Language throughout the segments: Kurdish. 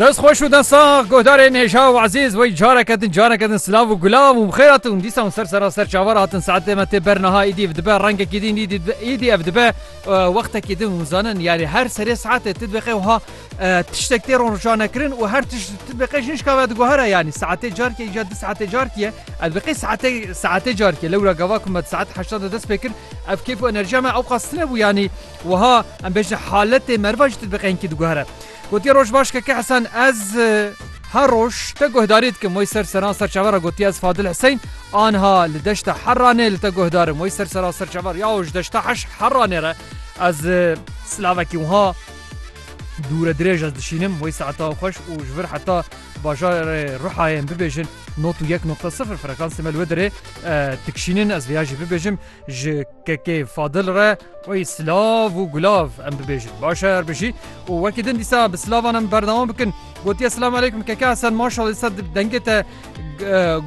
Dest xweş û densax guhdarên hêja û ezîz wey careke din careke din silav û gulav û bixêr hatin û dîsa hûn ser sera ser çavar hatin saetê me tê ber niha îdî ev dibe rengekî din îdî îdî ev dibe wextekî din hûn zanin yanî her serê saetê tu dibêxê wiha tiştek tê ronrojanekirin û her tişt tu dibêxê jin şikave diguhere yanî saetê carkê îca du saetê carkiye ev dibêxê saetê saetê carkiye lewra gava ku me saet heşta de dest pê kir ev kêf û enerjiya me ewqas tune bû yanî Wiha em bêjin haletê meriva jî tu bi qenkî diguhere. Gotiye roj baş keke Hesen ez her roj te guhdarî dikim wê ser seran serçavera gotiye ez Fadil Hiseyn anha li deşta herranê li te guhdarim wê ser seran serçaver ya ji deşta heş herranê re ez silavekî wiha dûre dirêj ez dişînim wê saeta xweş û ji vir heta bajarê ruhayên bibêjin not û yek nokta sifir frekansê me li wê dirê dikişînin ez vêya jî bibêjim ji Kekê Fadil re wê silav û gulav em bibêjin. Baş e her bijî û wekî din dîsa bi silavan em berdewam bikin. Gotiye Selam Aleyküm Keke Hesen maşallah dîsa dengê te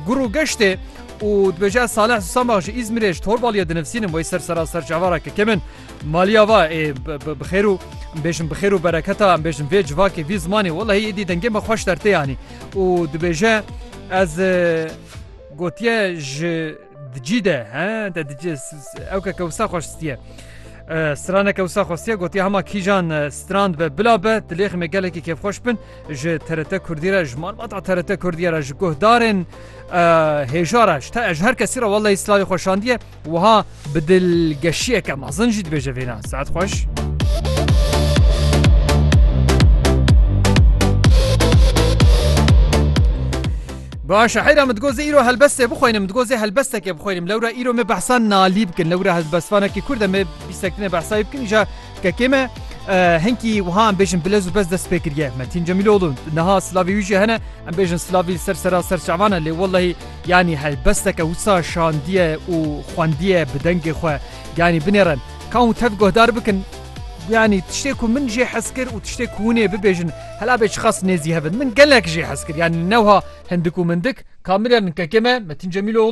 gur û geştê û dibêje ez Saleh Susamak ji Îzmirê ji Torbaliyê dinivsînim wê ser sera ser çavara kekê min maliya va ê bi xêr û em bêjin bi xêr û bereketa em bêjin vê civakê vî zimanê welahî êdî dengê me xweş dertê yanî û dibêje ez gotiye ji Dicî de he de dicî ew ke kewsa xweş stiye. Strane kewsa xwestiye gotiye hema kîjan strand be bila be dilêxi me gelekî kêfxweş bin ji TRT Kurdî re ji malbata TRT Kurdiye re ji guhdarên hêja re ji te ji her kesî re welleyî slavî xweşandiye wiha bi dilgeşiyeke mezin jî dibêje vêna saet xweş. Baş e heyra min digot zê îro helbestê bixweynim min digot zê helbestekê bixweynim lewra îro me behsa nalî bikin lewra helbestvanekî kurd e me bîstektinê behsa wî bikin îja kekê me hinkî wiha em bêjin bilez û bez dest pê kiriye me tîn cemîlolû niha silavî wî jî hene em bêjin silavî ser sera ser şevan e lê wellehî yanî helbesteke wisa şandiye û xwendiye bi dengê xwe yanî binêrin kan û tev guhdar bikin yanî tiştê ku min jê hez kir û tiştê ku hûnê bibêjin Hela bê çiqas nêzî hev in. Min gelek jê hez kir. Yanî ne wiha hindik û mindik. Kamîrernikekê me Metîn Cemîloglû.